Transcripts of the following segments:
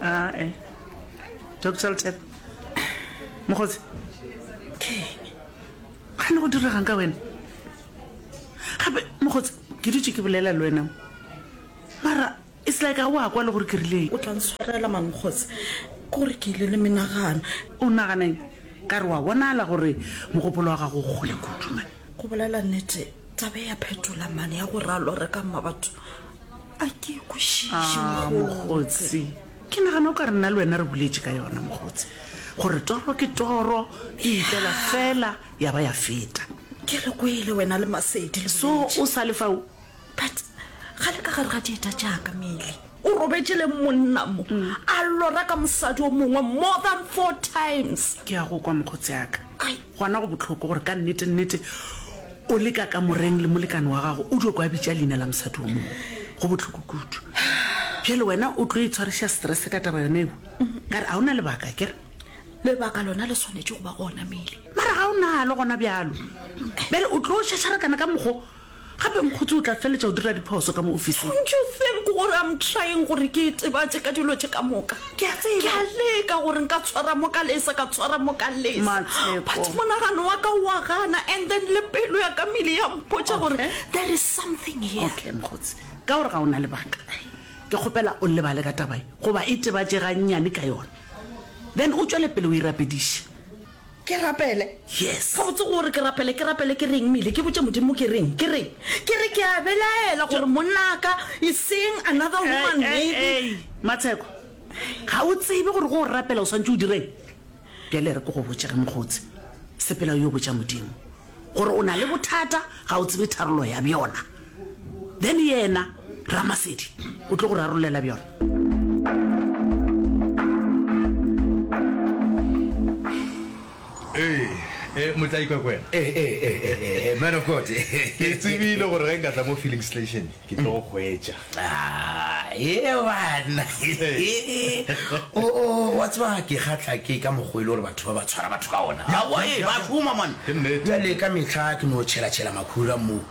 ae doctor ltep mokgotsi ke gane go diregang ka wena gape mokgotsi ke dutse ke bolela le wena mara e se like ga o a kwa le gore ke rileng o tla ntshwarela mankgotsi kore ke ile le menagano o naganeng ka re wa bonala gore mogopolo wa gago o kgole kudu mane go bolela nnete tabe ya phetola mane ya go ralo re ka mma batho A ke e kwešiše, mokgotsi. Ke nagana o ka re nna le wena re boletše ka yona, mokgotsi, gore toro ke toro, e itlela fela ya ba ya feta. Ke re kwele wena le Masedi le boletše. So o sa le fao? But ga le ka gare ga dieta tša ka, Milly. O robetše le monna mo, a lora ka mosadi o mongwe more than four times. Ke a go kwa, mokgotsi a ka. Gona go bohloko gore ka nnete-nnete o le ka kamoreng le molekane wa gago, o dio kwa bitša leina la mosadi o mongwe. Go bohloko kudu. Bjale wena o tlo itshwariša stress ka taba yona eo? Ka re, ga o na lebaka, kere? Lebaka lona le swanetše go ba gona, Mele. Mara ga o nalo gona bjalo. Bjale o tlo šašarakana ka mokgo. Gape Mokgotse o tla feletša go dira diphoso ka mo ofising. Don't you think gore I'm trying gore ke itebatše ka dilo tše ka moka? Ke a tseba. Ke a leka gore nka tshwara mo ka lesa, ka tshwara mo ka lesa. Matshepo. But monagano wa ka wa gana and then le pelo ya ka mele ya mpotša gore Okay. there is something here. Okay, Mokgotse, ka gore ga o na lebaka, ke kgopela o lebale ka taba ye goba itebatše gannyane ka yona then o tšwele pele o e rapediše. Ke rapele? Yes. Gabotse go o re ke rapele, ke rapele ke reng? Mile, ke botše Modimo ke reng? Ke re, ke re ke a belaela gore monnaka, eseng another woman maybe. Ei, ei, ei, Matsheko, ga o tsebe gore go o rapela o swantše o direng? Bjale re ko go botše ge mokgotsi, sepela o yo botša Modimo gore o na le bothata, ga o tsebe tharollo ya bjona. then yena ramasedi o tlo go rarolela bjona ee eh, motlaikwa kwena eh, eh, man of god ke tsebile gore ge nka tla mo feeling station ke tlo go hwetša ah, e bana o oh, oh, wa tseba ke kgatla ke ka mokgwa e le gore batho ba ba tshwara batho ka ona awae ba šoma man bjale ka metlha ke no tšhelatšhela makhura mo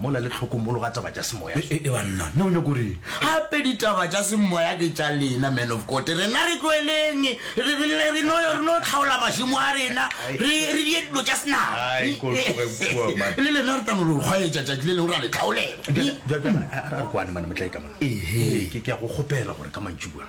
Mo na le tlhokomolo ga taba tša semoya. E, e, e banna, na o nyako reng? Gape ditaba tša semoya ke tša lena, man of God. Rena re tloeleng, re, re, re, re no, re no tlhaola mašemo a rena, re, re die dilo tša senama. Ai, ko tloge kua, man. Le lena re tla no lo kgwaetša tšatši le leng, ra le tlhaolela. Bjale, bjale, a, a re kwane, man, motlae ka mona. Ehe. Ke, ke a go kgopela gore ka mantšibua,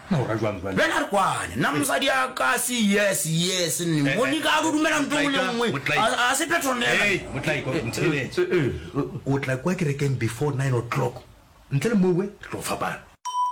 Bjale a re kwane, nna mosadi ya ka se yes, yes, nne, Monica a no dumela ntho engwe le engwe, ga se phetronela. O tla kwa kerekeng before nine o'clock, ntle le mowe re tlo fapana.